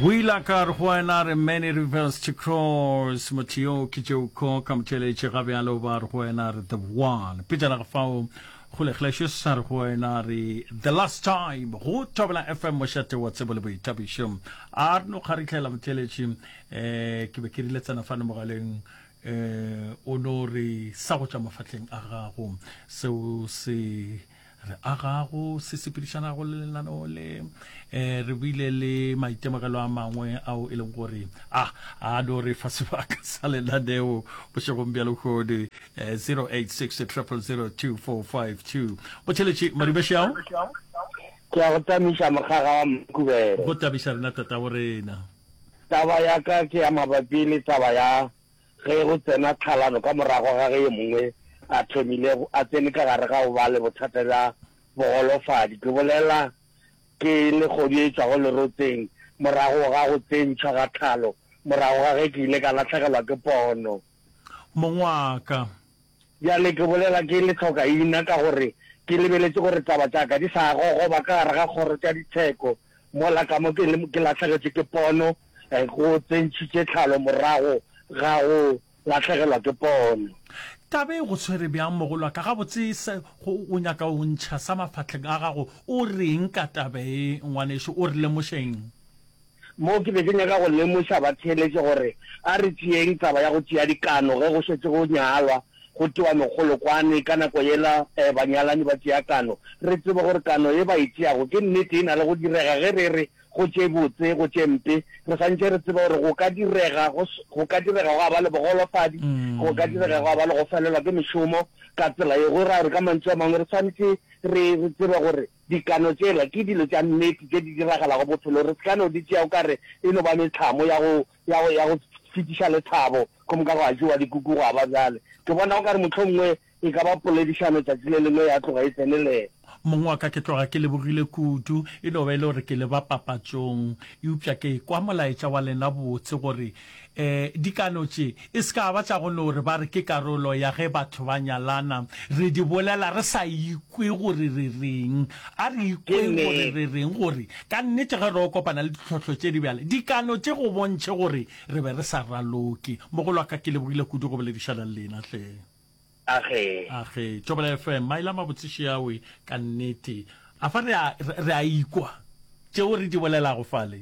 O ile a ka re go wena, a re, Many rivers to cross, motho yo ke tšeo ko ka motšeletše ga bjalo ba re go wena, a re, The one. Petšana ga fao go lekgeleše sa re go wena, a re, The last time, go Thobela FM, mošate wa tsebo le boithabišo. A re no kgarihlela motšeletše, um eh, ke be ke rile tsena fane mogaleng, um o no re sa go tšwa mafahleng a gago, seo se re agago se sepedišanago le lenaneo le um re buile le maitemogelo a mangwe ao e leng gore a a no re fa sebaka sa lenaneo bošegong bja lekgodi um 086 002452 botheletši madibešao ke ya go tamiša mokgaga wa mkubele go tamiša rena tatabo rena taba ya ka ke ya mabapi le taba ya Ge go tsena tlhalano ka morago ga ge yo mongwe a thomile a tsene ka gare ga go ba le bothata bja bogolofadi, ke bolela ke legodu e tšwago lerotseng, morago ga go tsentšhwa ga tlhalo, morago ga ge ke ile ka lahlegelwa ke pono. Mongwaka, Bjale ke bolela ke le hloka ina ka gore ke lebeletše gore taba tša ka di sa gogoba ka gare ga kgoro tša ditsheko mola ka mo ke, ke lahlegetše ke pono, go tsentšhitše tlhalo morago ga go lahlegelwa ke pono. Taba e go tshwere bjang mogolwaka? Gabotse se go o nyaka o ntšha sa mafahleng a gago. O re'ng ka taba e, ngwanešu? O re lemoše'ng? Moo ke be ke nyaka go lemoša batheeletše gore a re tšeeng taba ya go tšea dikano ge go šetše go nyalwa, go tewa megolokwane, ka nako yela banyalani ba tšea kano, re tsebe gore kano ye ba e tšeago ke nnete e na le go direga ge re re go tše botse, go tše mpe, re swantšhe re tsebe gore go ka direga go ka direga gwa ba le bogolofadi, go ka direga gwa ba le go felelwa ke mešomo ka tsela ye go raya gore ka mantšu a mangwe re swantšhe re tsebe gore. Dikano tšela ke dilo tša nnete tše di diragalago bophelong. Re se ka no di tšea o ka re e no ba metlhamo ya go, ya go, ya go fetiša lethabo, go moka gwa jewa dikuku gwa ba bjale. Ke bona o ka re mohlomongwe e ka ba poledišano letšatši le lengwe ya tloga e tsenelela. Mong wa ka ke tloga ke lebogile kudu, e no ba e le gore ke leba papatšong. Eupša ke ekwa molaetša wa lena botse gore Dikano tše e se ka ba tša go no re ba re ke karolo ya ge batho ba nyalana. Re di bolela re sa ikwe gore re reng. A re ikweng gore re reng gore ka nnete ge re yo kopana le ditlhohlo tše di bjale, dikano tše go bontšhe gore re be re sa raloke. Mogolo wa ka, ke lebogile kudu go boledišana le lena hle. Agee. Agee. Tšobela FM, maele a mabotse Sheawe. Ka nnete. A fa re a, re a ikwa tšeo re di bolelago fale?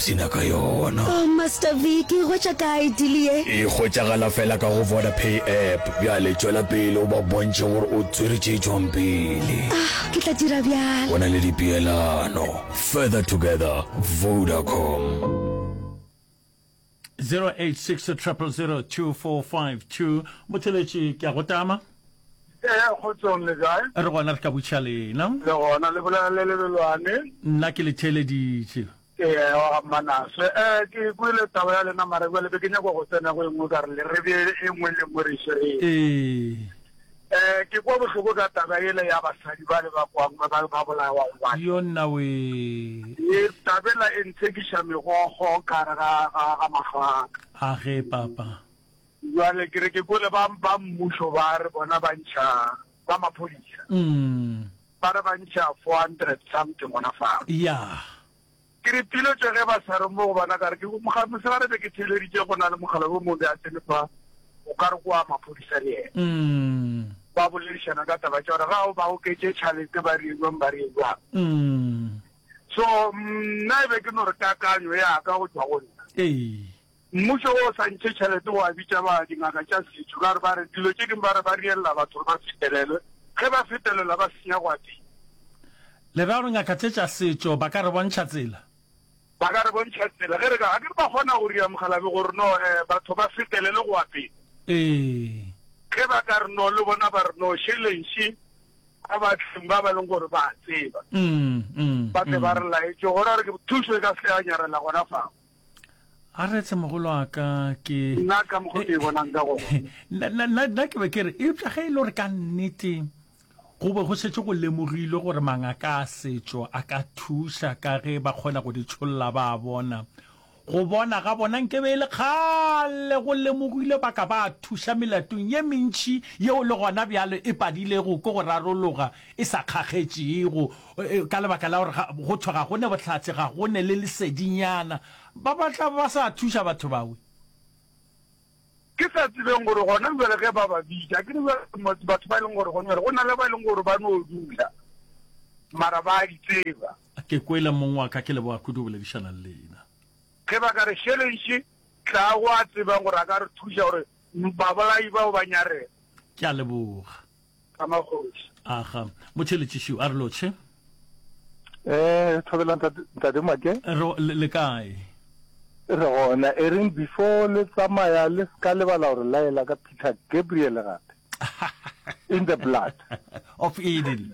Se nyaka yona. Oh Master Vic, e hwetša kae deal ye? E hwetšagala fela ka go Vodapay app. Bjale tšwela pele o ba bontšhe gore o tswere tše tšwang pele. Ah, ke tla dira bjalo. Go na le dipeelano. Further together, Vodacom. 0860002452 Motheletši ke a go tama. Ee, kgotsong le kae? Re gona re ka butšha lena. Le gona le bolela le lebelwane. Nna ke le theeleditše. Eya wa ga Mmanase. Ee, ke kwele taba ya lena, mara bjale be ke nyakwa go tsena go e nngwe ka re le re bee e nngwe le nngwe re e swereng. Ee. Ee, ke kwa bohloko ka taba yela ya basadi bale ba kwang ba ba ba bolawago bale. Yo nnawee. Ee, taba ela e ntshekiša megogo ka gare ga ga ga mahlo a ka. A ge, Papa. Bjale ke re ke kwele ba ba mmušo ba re bona ba ntšha. ba maphodisa ba re ba ntšha four hundred something gona fao. Yeah. Ke re piletšo ge ba sa re mo go bona ka re ke moga mosegare be ke theeleditše go na le mogala wo mongwe be a tsene fa o ka re kwa maphodisa le ene. Ba boledišana ka taba tša gore ga o ba oketše tšhalete ba re jwang ba re jwang. So nna e be ke no re kakanyo ya ka go tšwa go nna. Mmušo wo o sa ntše tšhelete wa bitša ba dingaka tša setšo ka gore ba re dilo tše dingwe ba re ba riella batho gore ba fetelelwe, ge ba fetelelwa ba senya go a tee. Le ra gore ngaka tše tša setšo ba ka re bontšha tsela? Ba ka re bontšha tsela ge re ka, ga ke re ba kgona go ria mokgalabje gore no eh batho ba fetelelwe go a pele. Ee. Ge ba ka re no le bona ba re no šelenše ba ba tleng ba ba leng gore ba a tseba, ba tle ba re laetše gore re ke thušo e ka se ke ya nyarela gona fao. a retse mogolo wa ka ke nna ka mokgwa ke bonang ka gona nna ke be ke re eupša ge e le gore ka nnete go be go šetše go lemogilwe gore mangaka a setšo a ka thuša ka ge ba kgona go di tšholla ba a bona go bona ga bona nke be e le kgale go lemogilwe ba ka ba thuša melatong ye mentši yeo le gona bjalo e padilego ko go rarologa e sa kgakgetšego Ka lebaka la gore go thwe ga go ne bohlatse, ga go ne le lesedinyana, ba ba tla ba sa thuša batho bawe. Ke sa tsebeng gore gona bjale ge ba ba bitša, akere bjale batho ba e leng gore gona bjale go na le ba e leng gore ba no dula mara ba a di tseba. Ke kwele mong wa ka, ke leboga kudu go boledišana le lena. Ge ba ka re šelenše, tla go a tsebang gore a ka re thuša gore babolai bao ba nyarela. Ke a leboga. ka magoši aga motšheletšišiw a re lotšhe eh thobela ntate make le kae re gona e reng before le tsamaya le ska lebala gore laela ka peter gabriel gape in the blood of eden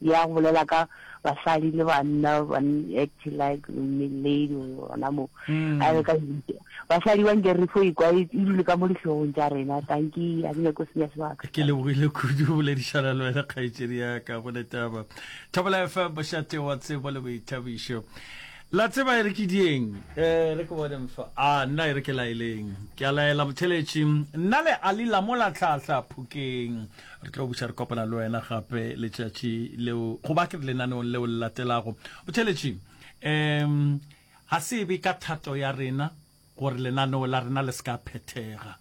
Ya go bolela ka basadi le banna ba act like lady gona mo mm. a re ka basadi ba nke re fo ikwa e dule ka mo dihlogong tša rena tanki a ke nyako senya sebaka ke lebogile kudu boledišana le wena kgaetšedi ya ka go letaba thobela fm bošate wa tsebo le boithabišo la tseba e re ke dieng um re ke bone mfa a nna e re ke laeleng ke a laela motheletši nna le ali la mo latlhatlha phokeng re tlo buša re kopana le wena gape letšatši leo goba ke re lenaneong leo le latelago botheletši um ga se be ka thato ya rena gore lenaneo la rena le se ka phethega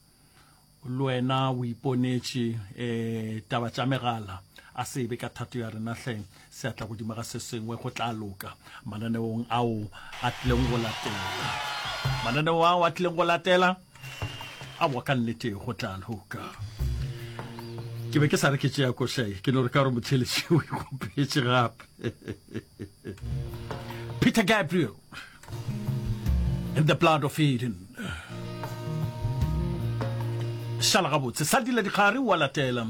le wena o iponetše um taba tša megala a se be ka thato ya rena hleng Seatla godimo ga se sengwe go tla loka mananeong ao a tlileng go latela. Mananeo ao a tlileng go latela a wa ka nnete go tla loka. Ke be ke sa re ke tšea košae ke no re ka gore motheletši o ikgopetse gape. Peter Gabriel in the blood of Eden. Shala gabotse, sa dila dikgare wa latela.